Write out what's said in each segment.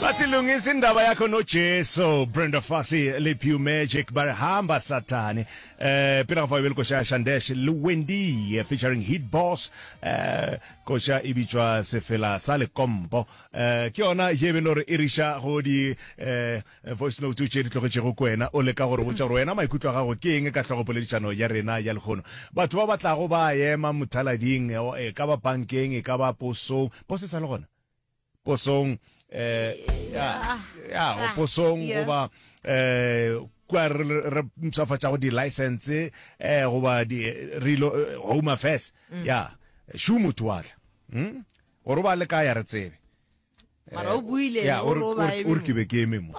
Batilungisa indaba yakho noJesu. Brenda Fassie le Pew Magic ba re hamba satane. Eh pele ga fa bjele koša Shandesh le Wendy featuring Hit Boss. Eh koša e bitšwa sefela sa lekompo. Eh ke yona ye be lore e riša go di eh voice note tše di tlogetšego kwena o leka gore botša gore wena maikutlo a gago ke eng ka hlogo poledišano ya rena ya lekgono. Batho ba batlago ba ema mothalading e ka ba bankeng e ka ba posong. Pose e sa le gona? posong eh ya ya go posong go ba eh kwa re re mpshafatsa go di license eh go ba di relo eh, home affairs mm. ya shu motho wa tla hm gore ba le ka ya re tsebe mara o buile ya o re ke be ke eme mo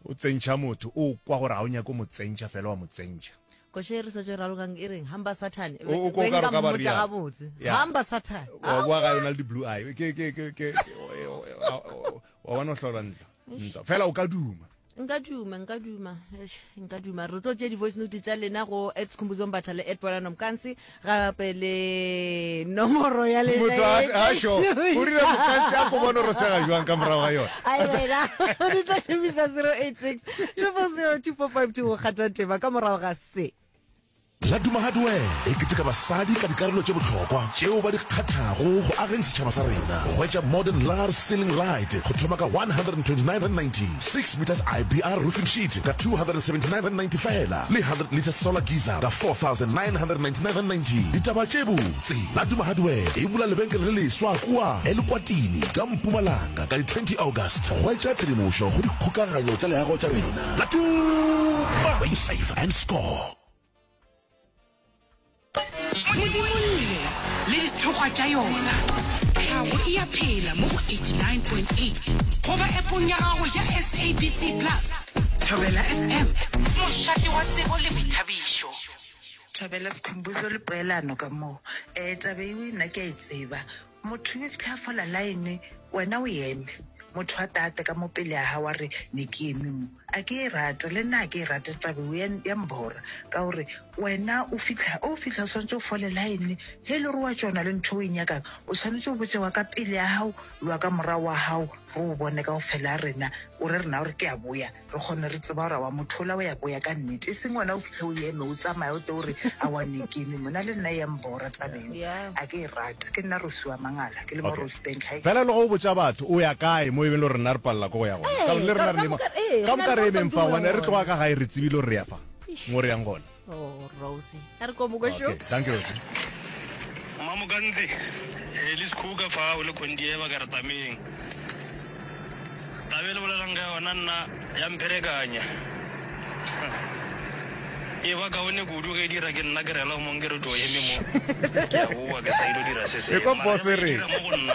O tsentšha motho, o kwa gore ga o nyake o mo tsentšha, fela wa mo tsentšha. Koša e re swetšo e ralokang e reng, hamba Satan, O- o- o ka re ka ba mmotša realo. gabotse, Ya. hamba Satan. wa boa gae o na le di-blue eye Ke- ke- ke- ke- ke- o- e- o- e- wa- o- wa bona o hlolwa ntlo ntlo fela o ka duma nka duma nka duma eish, nka duma re tlo tšea di-voice note tša lena go at sekhumbuzong batha le at ponano mokansi gape le nomoro ya le motho a a sho o rile mokantse a ko bona ro sega jwang ka morago ga yona a yena o di tla shemisa 086 2402452 go kgatha tema ka morago ga se la duma hardware e keteka basadi ka dikarolo tše bohlokwa tšeo ba di kgathago go ageng setšhaba sa rena go etša modern lar sealing right go thoma ka 129 meters ibr roofing sheet ka 279 fela le 100 litre solar geyser ka 4999.90. Ditaba tše botse, Laduma Hardware e bula lebenkele le leswa kua Elukwatini ka Mpumalanga ka di 20 August. Hwetša tshedimošo go dikgokaganyo tša leago tša rena. Laduma, where you save and score. modimolle le dithokgwa tša yona tlhago e ya phela mo go 89.8 goba epong ya gago ya sabc plus thobela fm mošate wa tsebo le boithabišo thobela sekhumbuzo le poelano ka moo um eh, tabe eo nna ke a e tseba Motho ne sehla fola line, wena o eme. Motho a tate ka mo pele a hao a re, Ne ke eme mo. A ke e rate, le nna a ke e rate taba eo, ya, ya mbora. Ka gore wena o fihla, o fihla o swanetše o fole line, ge e le gore wa tšona le ntho o e nyakang, o swanetše o botše wa ka pele ya hao le wa ka morago wa hao, re o bone kaofela rena, o re rena o re ke a boya. Re kgone re tseba gore awa motho ola o ya, o ya ka nnete e seng wena o fitlhe o eme o tsamaya o te o re awa ne kene mo na le nna ya mbora taba eo Yeah. a ke e rate ke nna Rosi wa Mangala ke le mo Okay. Rosebank High Fela le go botša batho o ya kae mo e beng le gore rena re palela ke go ya gona. Ee, Ka gobane le ka- rena re ka le mo- moka- ee, re ka na le moka mo re re sa ntse ntse mo ntse ya re tloga gona. ka gae re tsebile gore re ya fa mo re yang gona. oh rosie a re ko moko sho thank you rosie mamokantsi e le sekhuka fa o le kondieba ka re tameng tabe le bolelang ka yona nna ya mpherekanya e ba kaone kudu ge e dira ke nna ke rela mong ke re to eme mo ke a boa ke sa ile dira se se mo go nna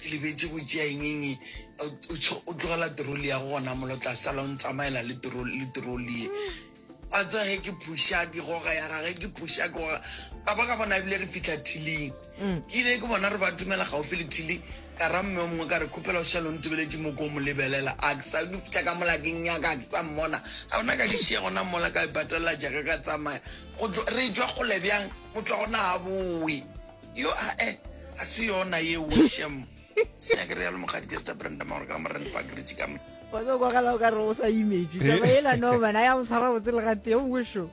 Ke lebetše go tšea eng eng e. O tsho o tlogela trolly ya gona molo tla sala o ntsamaela le trolly le trolly ye. Wa tseba ge ke pusha ke goga ya gage ke pusha ke goga. Ka ba ka bona ebile re fihla thiling. Ke ile ke bona re ba tumela gaufi le thili ka ra mme o mongwe ka re khupela o šale o ntubeletše mo ko mo lebelela a ke sa ke fihla ka mola ke nnyaka a ke sa mmona. A bona ka di šiya gona mola ka e patelela jaaka ka tsamaya go tlo re tšwa kgole bjang motho wa gona ha bowe. Yo ae a se yona ye wo shem. Se ya kere ya le mogadi tse tsa Brenda Mauro ka morena pa gritsi ka mona. Wa go go gala ka ro sa image. Tsa ba ela no bana ya mo tshwara botse le ga te o sho.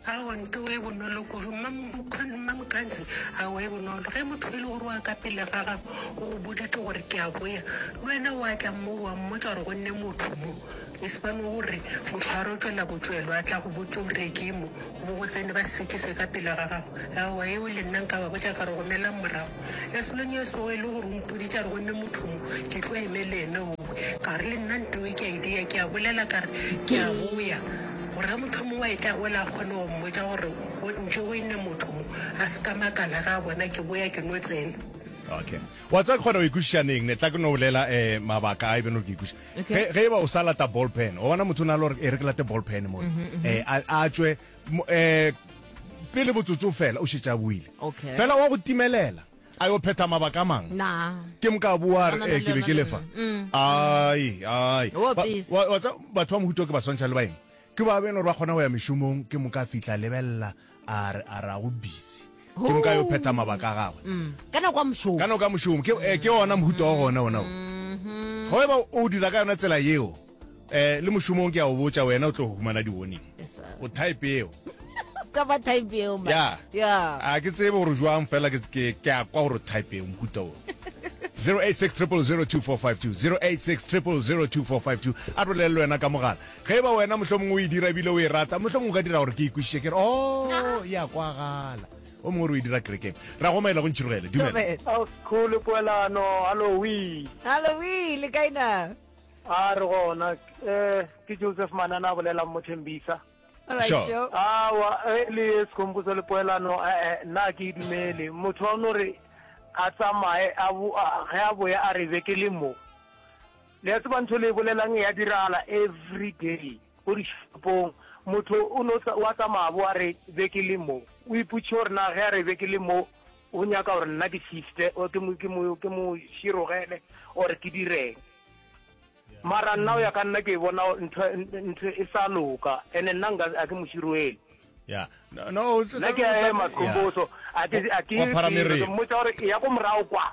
A o nto we bonolo go ruma mo go nna mo kanzi a we bonolo ge motho ile go roa ka pele ga ga go boditse gore ke a boya. Wena wa tla mo wa mmotsa gore go nne motho mo. E se ba no go re, Motho a rotšwe la botšwelo, a tla go botša o re, Ke mo, goba go tsene ba sekise ka pela ga gago. Aowa, yeo le nna nka ba botša ka re, Gomelang morago. Lesolong e sego e le gore o mpoditše a re, Gomme motho mo, ke tlo eme le ene owe. Ka re, Le nna ntewe ke a e dia, ke a bolela ka re, Ke a boya, gore ge motho yo mongwe a etla ola a kgone go mmotša gore, Go ntše go ene motho mo, a se ka makala ge a bona ke boya ke no tsena. Okay. Wa tseba ke kgona go e kwešiša neng ne tla ke no bolela eh mabaka a e be no ke e kwešiša. ge ge eba o sa lata ball pen wa bona motho o na le gore e re ke late ball pen mo eh a a tswe mo- eh pele botsotso fela o šetša buile Okay. fela wa go timelela a yo phetha mabaka a mangwe na ke moka bua Na, na, re na, eh ke be na, ke na, lefa na, mm. ai ai Wo Ba- busy. wa- wa tsa- batho ba mohuto ke ba swantšha le baeng ke ba beno gore ba kgona go ya mešomong ke moka a fihla lebelela a re a ra go busy ke nka yo phetha mabaka a gagwe mm. ka nako ya mošomo ka nako ya mošomo ke eh, ke ona mohuta wa gona ona o mm-hmm. go eba o dira ka yona tsela yeo eh le mošomong ke ya o botsa wena o tlo go humana di-warning o type eo ka ba type eo ya ya a ke tsebe gore jwang fela ke ke ke a kwa gore type eo mohuta o 0863002452 0863002452 a bolelele wena ka mogala Ge e ba wena mohlomongwe o e dira e bile o e rata, mohlomongwe o ka dira gore ke e kwešiše ke re, Oo, e a kwagala. O mongwe o re o e dira kerekeng. Re a go omaela go ntšhirogele. Dumela. Ao, Sekgole, poelano, hallowee. Hallowee, le kae na? A re gona. Um, ke Joseph Manana a bolelang mo Tembisa. All right, Sure. Joe. Awa, e le ye Sekhomposo le poelano, e-e, nna ga ke e dumele. Motho wa no re a tsamaye, a bo, a, ge a boya a re be ke le mo. Le a tseba ntho le e bolelang ya diragala every day ko dishopong. Motho o no wa tsamaya bo a re be ke le mo. O ipotše gore na ge a re be ke le mo o nyaka gore nna ke shifte or ke mo ke mo ke mo širogele or ke direng. Mara nna o ya ka nna ke bona ntho ntho e sa loka ene nna nka a ke mo široele. Yeah. No, no, o tla- nna ke a ema qomboso a ke a ke Wa phara meriri. mmotsa gore e ya ko morago kwa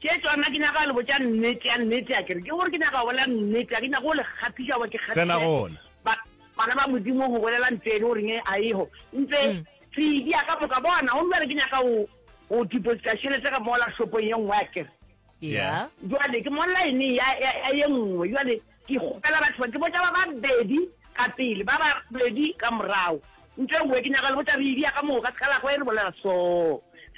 Ke tšona ke nyaka le botša nnete ya nnete a kere ke gore ke nyaka bolela nnete a ke nyaka go le kgaphiša ba ke kgaphiša tsena gona ba bana ba modimo go bolela ntse le gore nge a eho ntse mm. tsidi ya ka moka bona o mbere ke nyaka go go deposita šhelete ka mola shopo ye nngwe a kere yeah jwale ke molla ene ya ya ye nngwe jwale ke gopela batho ba ke botša ba babedi ka pele ba babedi ka morago ntse nngwe ke nyaka le botša re idi ya ka moka se ka la go e re bolela so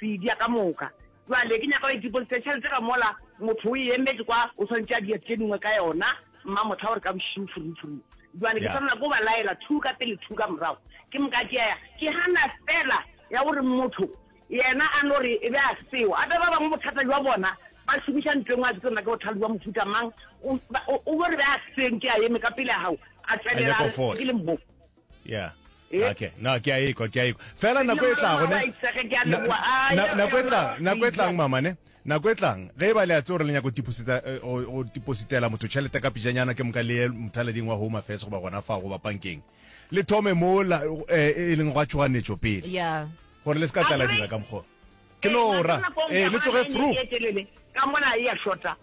re idi ya ka moka Bjale, ke nyaka o e deposite tšhelete ka mola, motho o e emetše kwa, o swanetše a dira tše dingwe ka yona, mma mohla gore ka bošego furufuru. Bjale, ke swanela ke go ba laela, thu ka pele, thu ka morago, ke moka ke ya, ke gana feela ya gore motho yena a no re e be a seo. Gape ba bangwe bothata bja bona, ba šomiša ntlo e nngwe, ga ke tsebe na ke bothata bja mohuta mang, o, o no re be a seo, nke a eme ka pele ga gago, a tšwelela a re, ke le mo. yeah eh? okay no ke a ikwa ke a ikwa fela nako e tlago ne nako e tlang nako e tlang mama ne nako e tlang ge e ba le a tse gore le nyako go tipositela eh, motho tšhelete ka pijanyana ke moka le mothaleding wa home affairs goba gona fa goba pankeng le thome mo eh, e leng gwa tšhoganetšo pele gore le se ka tlala dira ka mokgwa ke no ora ee le tsoge fru ka mona e ya shota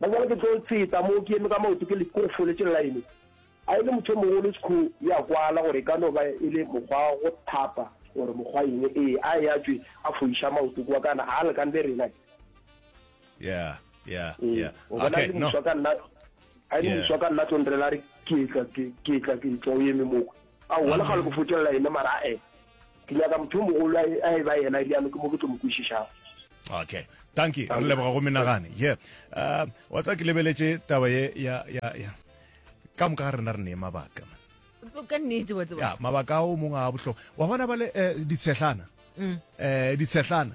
Ba bjale ke tlo tseta moo ke eme ka maoto ke le ko foletse line. A e le motho mogolo Skhoo ya kwala gore e ka no ba e le mokgwa wa go thapa gore mokgwa eng ee a e a tšwe a foiša maoto kwa kana ga a lekane le rena. Yeah, yeah, yeah. Okay, no. Moswa ka nna a e moswa ka nna tlo nrela re ke tla ke tla ke tla o eme moo. A wala ga le go fotšella ene mara eh. ke nyaka motho yo mogolo a e- a e ba yena e bjalo ke mo ke tlo mo kwešišago okay thank you re leboga go menagane ye uh, wa tsa ke lebeletše taba ye ya ya ya ka moka ga rena re ne mabaka man. ka nnete wa tseba ya mabaka ao mongwe a bohlokwa wa bona ba le eh, ditshehlana Mm. eh ditshehlana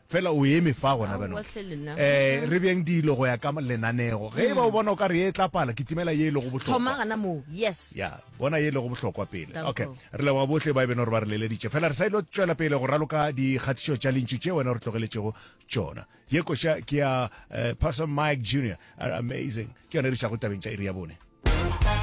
Fela o eme fa gona bjalo. Ee, re beeng dilo go ya ka lenanego. Ge e ba o bona o ka re ye e tla pala, kitimela ye e lego bohlokwa. Thoma gana moo. Yes. Ya, bona ye e lego bohlokwa pele. Ok. Re leboga bohle ba e beno re ba re leleditše. Fela re sa ilo tšwela pele go raloka dikgatišo tša Lentšu tše wena o re tlogeletšego tšona. Ye koša ke ya Pastor Mike Junior. Amazing. Ke yona e re išago tabeng tša iri ya bone.